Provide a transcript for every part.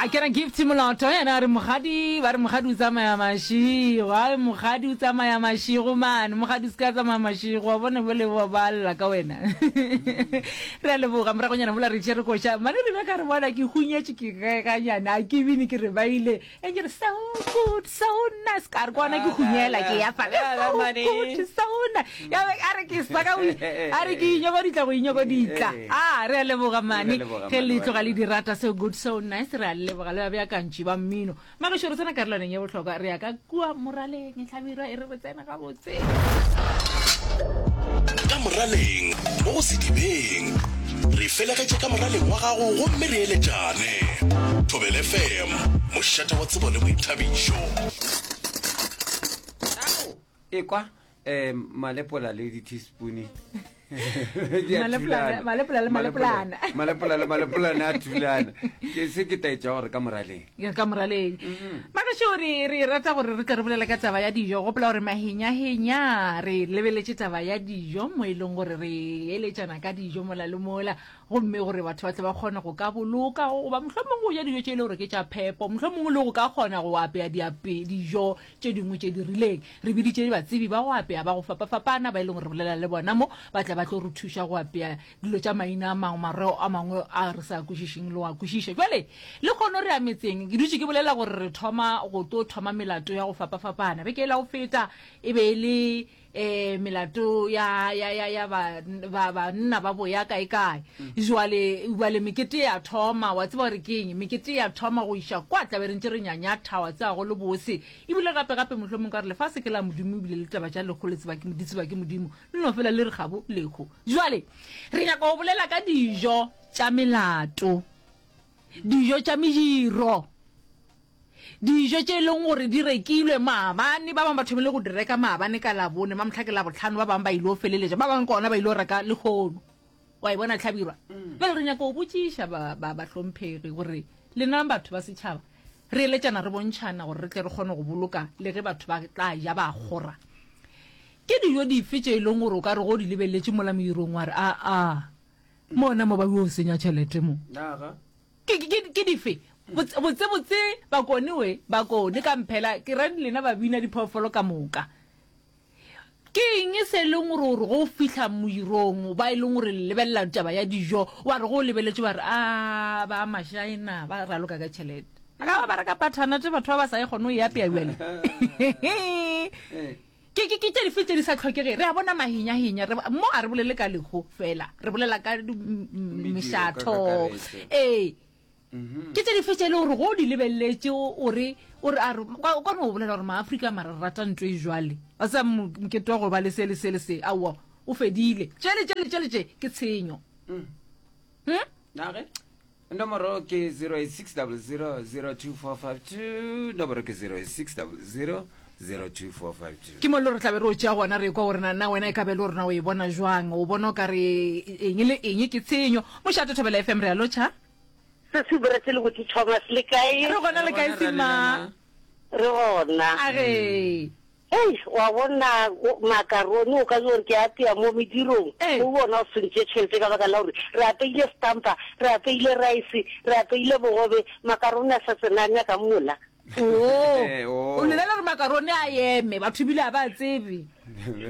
a kena gift moloto yena a re mogadi ba re mogadi o tsamaya mašigo a re mogadi o tsamaya mašigo mane mogadi o se ka tsamaya mašigo wa bone bole wa ba lla ka wena re a leboga moragonyana mola re tšere koša mane rena ka re bona ke hunyetše ke ganyana a ke bine ke re ba ile e ke re so good so nice ka re kwana ke hunyela ke ya fa so nice ya a re ke sa ka a re ke inyoko ditla go inyoko ditla eh, eh, eh. a ah, re a leboga mane ge le tloga le di rata so good so nice re a leboga le ba bjakantši ba mmino magešo re tsena karolwaneng ya bohlokwa re ya ka kua moraleng tlhabirwa e re re tsena gabotse ka moraleng mo go sedibeng re felegetše ka moraleng wa gago gomme re eletšane thobel fm mošate wa tsebo le boithabišo ekwa um malepola le diteaspoone malepolane a thulana ke se ke taetša gore ka moraleng ka moraleng mm-hmm. magašo re re rata gore re tle re bolela ka taba ya dijo gopola gore mahenyahenya re lebeletše taba ya dijo mo e leng gore re eletšana ka dijo mola le mola gomme gore batho ba tle ba kgone go ka boloka goba mohlomongwe o ja dijo tše e le gore ke tša phepo mohlomongwe le go ka kgona go apea dijo tše dingwe tše di rileng re biditše batsebi ba go apea ba go fapafapana ba e leng gore re bolela le bona mo ba tla ba tlo re thuša go apea dilo tša maina a mangwe mareo a mangwe a re sa kwešišeng le wa kwešiša jale le kgono re ametseng ke dutše ke bolela gore re thoma go tlo thoma melato ya go fapafapana beke e la go feta e be e le eh melato ya ya ya ya ba ba ba nna ba boya kae kae mm. jwale jwale mekete ya thoma wa tseba gore ke eng mekete ya thoma go iša kwa tlabe re ntse re nyanya thawa tsa go le bose ebile gape gape mohlomong ka re lefa se ke la modimo ebile le taba ja lekgo le tseba ke modimo tseba ke modimo le no fela le re gabo lekgo jwale re nyaka go bolela ka dijo tša melato dijo tša mediro Dijo tše e leng gore di rekilwe maabane, ba bangwe ba thomile go di reka maabane ka Labone, mamohla ke Labohlano, ba bangwe ba ile go feleletša, ba bangwe ka ona ba ile go reka lehono. Wa e bona Hlabirwa? Mm. Bjale re nyaka go botšiša bahlomphegi gore lenang batho ba setšhaba re eletšana re bontšhana gore re tle re kgone go boloka le ge batho ba tla ja ba kgora. Ke dijo dife tše e leng gore o ka re go di lebeletše mola modirong wa re aa mona mo ba yo senya tšhelete mo. Ke, ke, ke, ke dife? Botse, botse, botse, bakone we, bakone ka mphela, ke reng lena babina diphoofolo ka moka. Ke eng se e leng gore gore go fihla moirong ba e leng gore le lebelela taba ya dijo wa re go lebeletše ba re a ba mašaena ba raloka ka tšhelete a ka ba ba reka pathanate batho ba ba sa e kgone go e apea bjale Ke, ke, ke tše dife tše di sa tlhokege? Re a bona mahinya-hinya, re, mo a re bolele ka lehu fela, re bolela ka di, m, m, Mediro ka mešatho. kakaretšo. Ee. Ke tše dife tše e le gore go o di lebeleletše o o re, o re, a re, kwa, kwa no o bolela gore Maafrika mara re rata ntho e jwale. Wa tseba mo, mokete wa go ba le se le se le se, aowa, o fedile. Tšele, tšele, tšele tše, ke tshenyo. Hm? Na ge? Nomoro ke 0860002452, nomoro ke 0860002452. Ke mo le re tlabe re o tšea gona re kwa gore na na wena e ka be le rena o e bona jwang o bona o ka re eng le eng ke tshenyo mošate thobela fm re a lotšha se se bore se le botse thomas le kae re gona le kae sima re gona a ge Hei, o a bona, o, makarone, o ka no re ke a apea mo medirong, Ee. o bona o se ntše tšhelete ka baka la gore re apeile stampa, re apeile raese, re apeile bogobe, makarone a sa tsena a nyaka mola. Oo, Ee, oo. o lelela gore makarone a eme, batho ebile a ba a tsebe.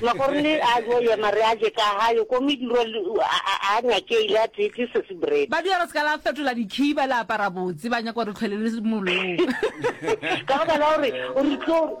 Makarone a yo yema, re a je ka gayo, ko mediro le, a, a, a nyakeile, a tee tee sesi bread. Ba dira re se ka la fetola dikhiba, la apara botse, ba nyaka gore re tlhwelele mollong. Ka baka la gore o re tlo.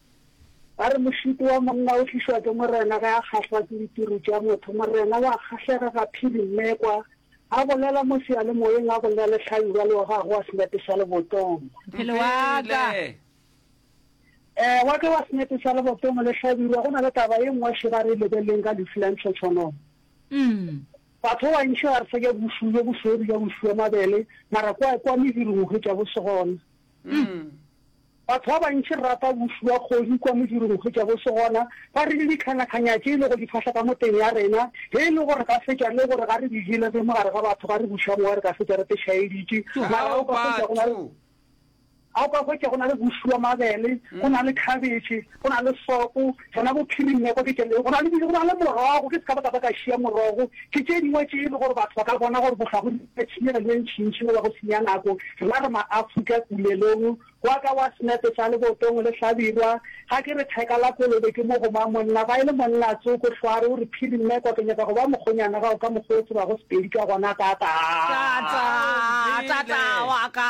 Ba re, Mošutu wa monna o tlišwa ke morena ge a kgahlwa ke ditiru tša motho. Morena wa kgahlega ga phiri mmekwa, a bolela mo seyalemoyeng, a bolela le hlabirwa le wa gagwe wa senepe sa lebotongo. Mphele wa ka. Ee, wa ka wa senepe sa lebotongo le hlabirwa. Go na le taba ye nngwe še ba re e lebeleleng ka lehu la ntlhotshonono. Batho ba bantši ga re sa ja bošuu bjo bosweu, re ja bošuu bja mabele, mara kwa, kwa mediro go hwetša bo se gona. Batho ba bantši rata go fiwa kgodu kwa modirong hwetša go se gona. Ba re le ditlhanyatlhanya tše e lego di fahla ka moteng ya rena. Ge e le gore ga se tša le gore ga re di jele re mogare ga batho ga re buša mowa re ka fetša re tešhaeditše. Mara ga o ka hwetša go na le ga o ka hwetša go na le go fiwa mabele, go na le khabetšhe, Go na le sopo, sona bophiring nne ko ke tšelele, go na le dijo, go na le morogo, ke se ka ba ka ba ka šiya morogo, ke tše dingwe tše e le gore batho ba ka bona gore bohlwa go nyaka tshenyegelo e ntšintši goba go senya nako. Rena re ma-Afrika, kulelong, gwa ka gwa senepe sa lebotong le hlabirwa, ga ke re theka la kolobe ke mo goma, monna ba e le monna a tsoko, hlwa a re o re phiri nne kwa ke nyaka go ba mokgonyana gago ka mokgwa o tsebago Sepedi ka gona, tata-a. Tata-a, tata-a wa ka.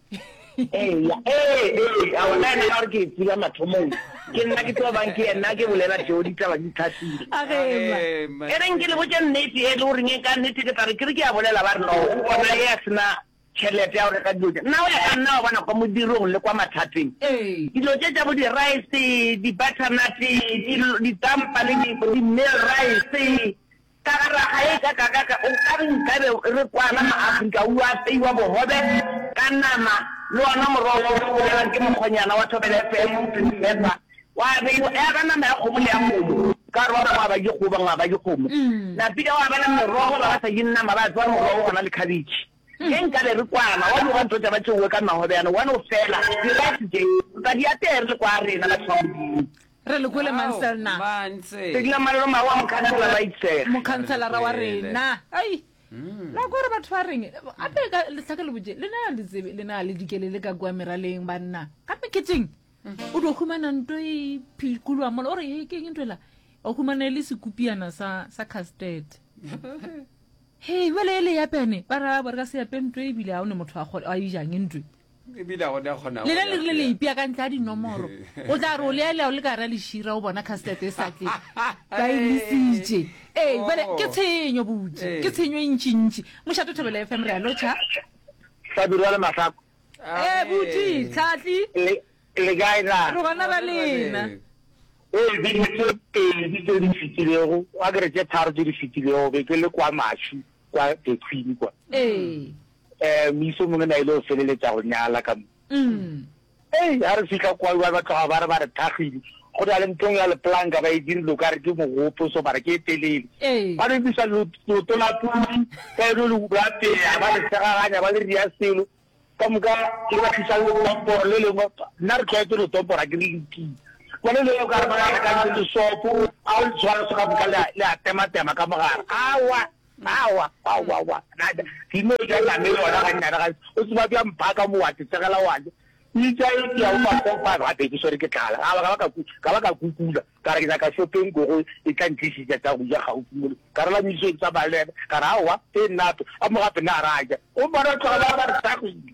eya ee ee a ona ena ga re ke tseba mathomong ke nna ke tlo bang ke ena ke bolela tšeo ditaba di tlhatsile e reng ke le botse nnete e le goreng e ka nnete ke tla re ke re ke ya bolela ba re no o bona e ya sena tšhelete ya go reka dilo tse nna o ya ka nna wa bona kwa modirong le kwa mathateng dilo tse tsa bo di-rice di-butternut ditampa le di-meal rice Ka ga raga ye ka kakaka o ka re nkabe re kwana mo Afrika o yo apeiwa bogobe ka nama le ona morogo wo o bolelwang ke mokgonyana wa Thobela FM o thweng Sefa wa abeiwa ya ba nama ya kgomo le ya kgomo ka gore ba bangwe a ba je kgomo ba bangwe a ba je kgomo napile gwa ba le merogo ba ba sa jeng nama ba apewa morogo gona le khabetšhe ge nkabe re kwana wa di wa ntotša ba tšeowe ka magobe yana one o fela di rice tše ba di apeye re le kwa rena batho ba Modimo. Re le kwele Manselna. Ke dula Malolo Maru wa Mokhansela wa Itsege. Mokhanselara wa rena. Ai. La kwa re batho ba reng gape ka lehlake le botše le na le tsebe le na le dikele le ka kwa meraleng banna ka meketeng o do humana nto e phikoloa mola o re he ke eng nto ela o humana e le sekupiana sa sa custard he bjale e le yapene ba ra ba re ka se yape nto e bile ga o ne motho a kgole a ijang ntwe lena le rile le ipea ka ntle a dinomoro o tla re o lealea o le ka ra lešira o bona castet e sa tle ba e lesitše ee bale ke tshenyo botse ke tshenyo e ntšintši mošato thobela f m re a lotšha hlabirwa le mahlako ee botse tlhatli le kae na re gona ba lena ee beke tse pedi tse di fetilego a kere tse tharo tse di fetilego be ke le kwa maši kwa the queen kwa ee um moisa o mongwe na ile go feleletša go nyala ka mo ei ga re fitlha kwa ba ba tloga ba re ba re thagile go na le nthong ya leplanka ba e dirile ka re ke mogopo so mara ke e telele Ee. ba re bisa leoto la pudi ka eno le lapeya ba re segaganya ba le ria selo ka moka ke ba tlisa letomporo le lengwe nna re tlwaetse letomporo a ke le lekile bone le ka re ba re ka le sopo a o le tshwara se ka moka le a- le a tema tema ka mogare awa Aowa, aowa, aowa, Nada, ke no ja nama e yona gannyane gantsi. O tseba bjang phaa ka mo wa tetsegela wa ja? E tša e tšea bo ma four five gape ke swere ke tlala. Ga ba ka ba ka ku, ka ba ka kukula, ka re ke nyaka šopeng ko go e tla ntlišitša tša go ja gaufi mole. Ka re la Mmisong ke tsamaya le yena, ka re aowa, e nnato, a mo gape na ra ja. Gomme bona tloga ba ba re tagile.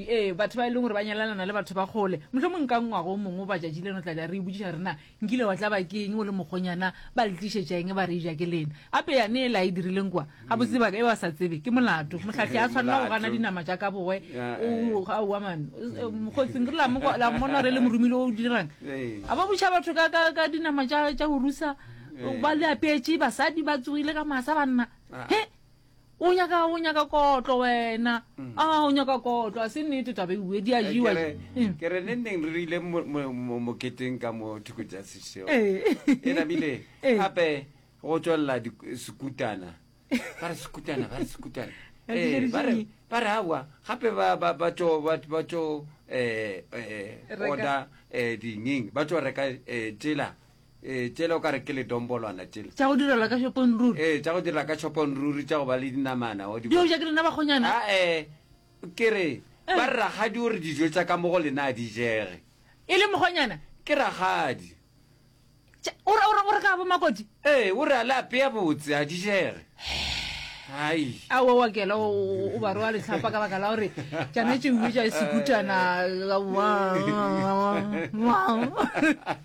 Ee, batho ba e leng gore ba nyalelana le batho ba kgole. Mohlomong ka ngwago o mongwe batšatši leno tla tla re ibotsiša rena, Nkile wa tlaba ke eng o le mokgonyana? Ba le tlišetša eng ba re eja ke lena? Gape ya ne e la e dirileng kwa? Gabotse baka e ba sa tsebe ke molato. Mohlahli a tshwanela go gana dinama tša ka bowe. O, aowa man. Mokgotsing re la mo la mmona re le morumile o dirang. A ba botša batho ka ka ka dinama tša tša go rusa ba le apetše basadi ba tsogile ka masa banna. He! o nyaka o nyaka kotlo wena mm. a ah, o nyaka kotlo a se nnete tabe bue di a eh, jewa mm. ke re ne nneng re rile moketeng ka mo thoko tsa sešeo eh. e namile eh. gape go tswelela sekutana ba re sekutana ba re sekutana ba re awa gape batso um order um dingeng ba tso reka tsela Ee, tšele o ka re ke ledombolwana tšele. Tša go direla ka shopong ruri. Ee, tša go direla ka shopong ruri tša go ba le dinamana. O di bona. Di hoja ke lena bakgonyana. A e ke re eh. ba ragadi o re dijo tša ka mo go lena a di jege. E le mokgonyana. Ke ragadi. O re o re o re ka bo makoti. Ee, o re a le apeya botse a di jege. hai a wa wa kela o ba roa letlhapa ka baka la gore tšana tšeuwe tša sekutana